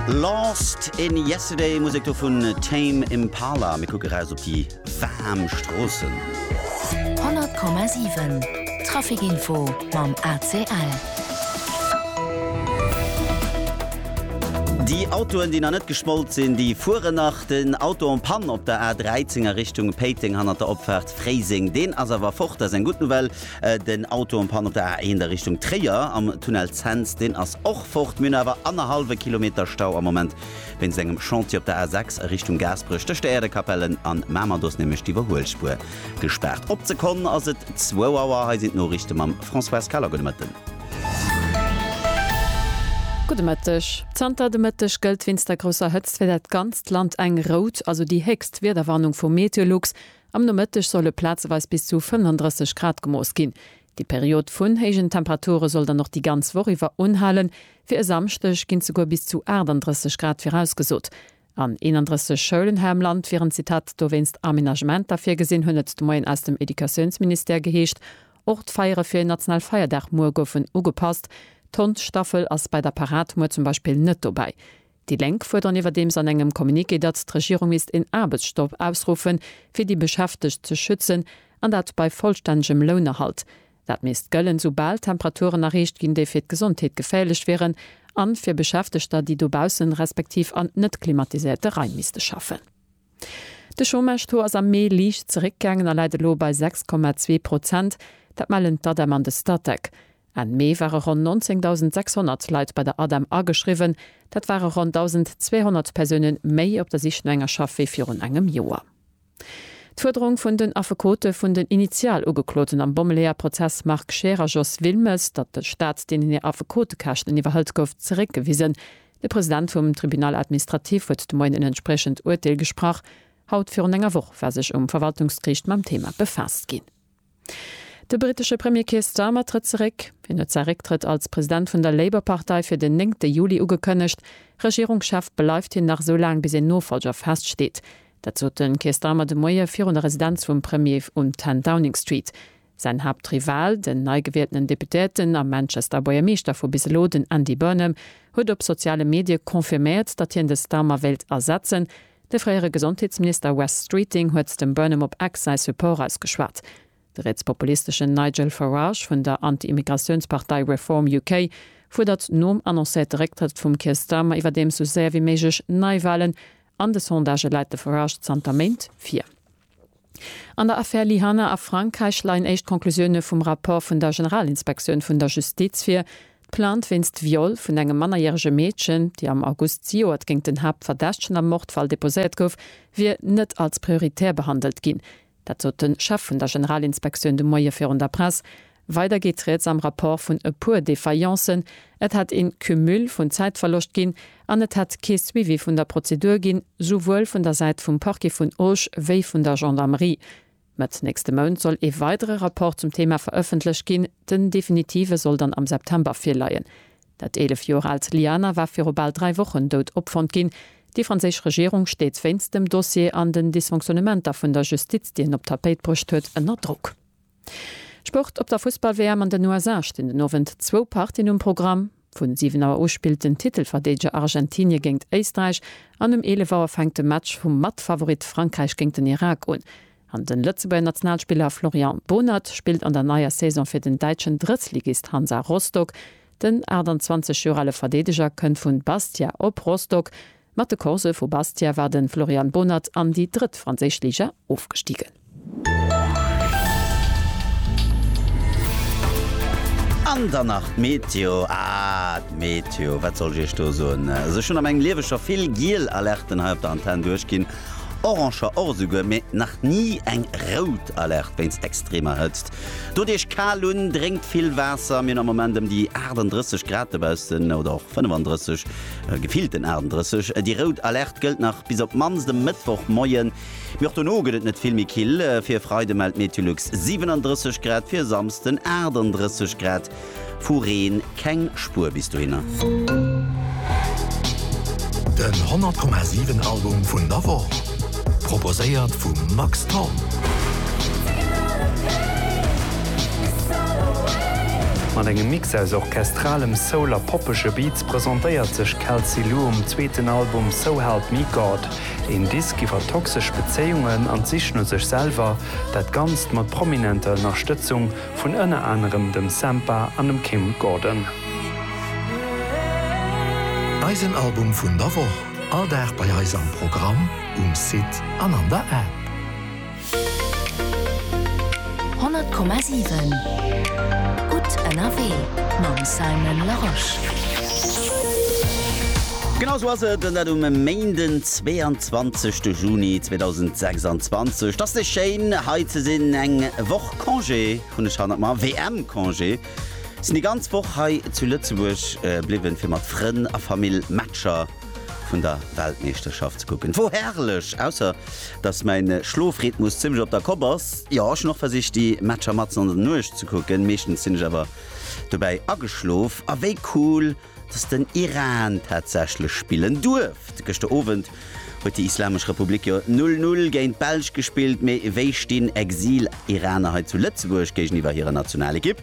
Lost in Yesterday, Musek do vun Tame Impala. Mir kucke raus op déi waarm Stroossen. 100,7 Trafic Info mam ACL. Déi Autoen, déi nach net geschmolt sinn, déi fueren nach. Den Auto en panne op der A13 a Richtung Péiteng hannert der Opfaart Fréiseng, deen ass awer fort, dat ass eng gutt Nouvelle. Den Auto en Panne op der A1 a Richtung Tréier am Tunnel Cents, deen ass och fort. Mir hunn awer annerhallwe Kilometer Stau am Moment wéinst engem Chantier op der A6 a Richtung Gaasperech, tëscht der Äerdekapellen an Mamer. Do ass nämlech d'Iwwerhuelspuer gespaart. Op d'Sekonn ass et zwou Auer. Hei sinn d'Noriichte mam Françoise Kaler. Gudde Mëtten. Gudde Mëtteg. Zanter de Mëtteg gëllt wéinst der grousser Hëtzt fir dat ganzt Land eng rout, also déi héchst Wiederwarnung vu Meteolux. Am Nomëtteg solle plazeweis bis zu 35 Grad gemooss ginn. Déi Period vun héijen Temperature soll dann och déi ganz Woch iwwer unhalen. Fir e Samschdeg ginn souguer bis zu 38 Grad virausgesot. An 31 Schoulen hei am Land wieren, Zitat, dowéinst Amenagementer virgesinn, hunn et de Moien aus dem Educatiounsministère geheescht. Och d'Feiere fir en national Feierdag muer goufen ugepasst. D'Hondstaffel ass bei der Parad muer zum Beispill net dobäi. Déi Lénk fuerderen iwwerdeems an engem Communiqué, datt d'Regierung misst een Aarbechtsstopp ausruffen, fir déi Beschäftegt ze schützen, an dat bei vollstännegem Lounerhalt. Dat misst gëllen, soubal d'Temperaturen erreecht ginn, déi fir d'Gesondheet geféierlech wieren, a fir Beschäftegter, déi dobaussen, respektiv an net klimatiséierte Raim misste schaffen. De Chômage-Taux ass am Mee liicht zeréckgaangen a läit elo bei 6,2 Prozent. Dat mellen d'ADEM an de Statec. Enn Mee ware ronn 19.600 Leit bei der ADEM ageschriwwen. Dat ware ronn 1.200 Persoune méi op der Sich no enger Schaff wéi virun engem Joer. D'Fuerderung vun den Affekote vun den Initialugekloten am Bommeleeër-Prozess Marc Scheer a Jos Wilmes, datt de Staat deenen hir Affekotekäschten iwwerhëlt, gouf zeréckgewisen. De President vum Tribunal administratif huet de Moien en entspriechend Urteel gesprach. Haut virun enger Woch war sech um Verwaltungsgeriicht mam Thema befaasst ginn. De brittesche Premier Keir Starmer trëtt zeréck. Hien huet säi Récktrëtt als President vun der Labour-Partei fir den néngte Juli ugekënnegt. Regierungschef bleift hien nach sou laang, bis een Nofollger feststeet. Dat sot de Keir Starmer de Moie virun der Residenz vum Premier um 10 Downing Street. Säin Haaptrival, den neigewieltenen Deputéierten a Manchester Buergermeeschter vu bis elo, den Andy Burnham, huet op soziale Medie confirméiert, datt hien de Starmer wéilt ersetzen. De fréiere Gesondheetsminister Wes Streeting huet dem Burnham op X säi Support ausgeschwat. De rietspopulisteschen Nigel Farage vun der Anti-Immigratiounspartei Reform UK fuerdert nom annoncéierte Récktrëtt vum Keir Starmer iwwerdeems sou séier wéi méiglech Neiwalen. An de Sondagë läit de Farage zanter Méint vir. An der Affär Lyhanna a Frankräich leien éischt Conclusioune vum Rapport vun der Generalinspektioun vun der Justiz vir. D'Plainte wéinst Viol vun engem mannerjärege Meedchen, déi am August zejoert géint den Haaptverdächtegen am Mordfall deposéiert gouf, wier net als prioritär behandelt ginn. Dat sot de Chef vun der Generalinspektioun de Moie virun der Press. Weider geet rieds am Rapport vun e puer Défaillances, et hätt een Cumul vun Zäitverloscht ginn an et hätt kee Suivi vun der Prozedur ginn, souwuel vun der Säit vum Parquet vun Auch wéi vun der Gendarmerie. Mëtt nächste Mount soll ee weidere Rapport zum Thema verëffentlecht ginn, den definitive soll dann am September virleien. Dat 11 Joer aalt Liana war viru bal dräi Wochen dout opfonnt ginn. Déi franséisch Regierung steet wéinst dem Dossier an den Dysfonctionnementer vun der Justiz, déi en op d'Tapéit bruecht huet, ënner Drock. Sport Op der Fussball-WM an den USA stinn den Owend zwou Partien um Programm. Vu 7 Auer u spillt den Titelverdeedeger Argentinie géingt Éisträich an um 11 Auer fänkt de Match vum Matfavorit Frankräich géingt den Irak un. An den Lëtzebuerger Nationalspiller Florian Bohnert spillt an der neier Saison fir den däitschen Drëttligist Hansa Rostock. Den 28 Joer ale Verdeedeger kënnt vun Bastia op Rostock. Mat de Corse vu Bastia war de Florian Bonert an déi drëtt franséisch Liga ofgestigen. An dann nach d'Meteo, ah d'Meteo, wat soll ech iech do soen? Sech hunn am eng lieweger vill giel Alerten hei op der Antenn duerchginn, oranger och esouguer, mee nach ni eng rout Alerte wéinst extremer Hëtzt. Dot iech kal un, drénkt vill Waasser. Mir hunn am Moment ëm déi 38 Grad dobaussen, oder och 35. Gefillten 38, déi rout Alerte gëllt nach bis op d'mannst e Mëttwochmoien, mee och dono gëtt et net vill méi kill. Fir e Freide mellt Meteolux 37 Grad, fir e Samsden 38 Grad. Vu Reen keng Spuer bis dohinner. Den 100,7 Album vun der Woch, proposéiert vum Max Thorn. Mat engem Mix aus orchestralem Soul a poppege Beats presentéiert sech Kelsey Lu um zweeten Album So Help Me God, een Disk iwwer toxesch Bezéiungen an d'Sich no sech selwer, dat Ganzt mat prominenter Ënnerstëtzung vun ënner anerem dem Sampha an dem Kim Gordon. Eisen Album vun der Woch, all Dag bei eis am Programm, um Site an an der App. 100,7 Gutt ënnerwee mam Simon Larosche. Genau esou ass et, dat um Méinden 22 de Juni 2026. T'ass nees schéin hei ze sinn. Eng Woch Congé hunn ech hannert mer, WM-Congé. Sinn déi ganz Woch hei zu Lëtzebuerg bliwwen fir mat Frënn a Famill Matcher vun der Weltmeeschterschaft ze kucken. Wor herrlech, ausser dass mäin Schlofrhythmus zimmlech op der Kopp ass. Jo, ech hun och versicht déi Matcher matzen an der Nuecht ze kucken, meeschtens sin ech awer dobäi ageschlof. A wéi cool dass den Iran tatsächlech spillen duerft. Gëschter Owend huet déi Islamesch Republik jo 0, 0 géint d'Belsch gespillt, mee wéi stin Exil-Iraner hei zu Lëtzebuerg géigeniwwer hirer Nationalekipp?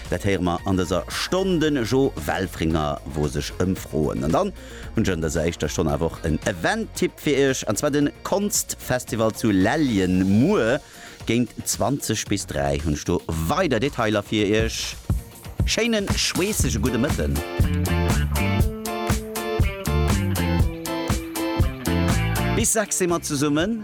Dat héiere mer an dëser Stonn de Jo Welfringer, wou sech ëmfroen. An dann hunn ech an dëser éischter Stonn awer och en Event-Tipp fir Iech, an zwar de Konstfestival zu Lellien. Muer géint 20 bis 3 hunn ech do weider Detailer fir Iech. Schéine schweessege gudde Mëtten. Bis 6 si mer zesummen.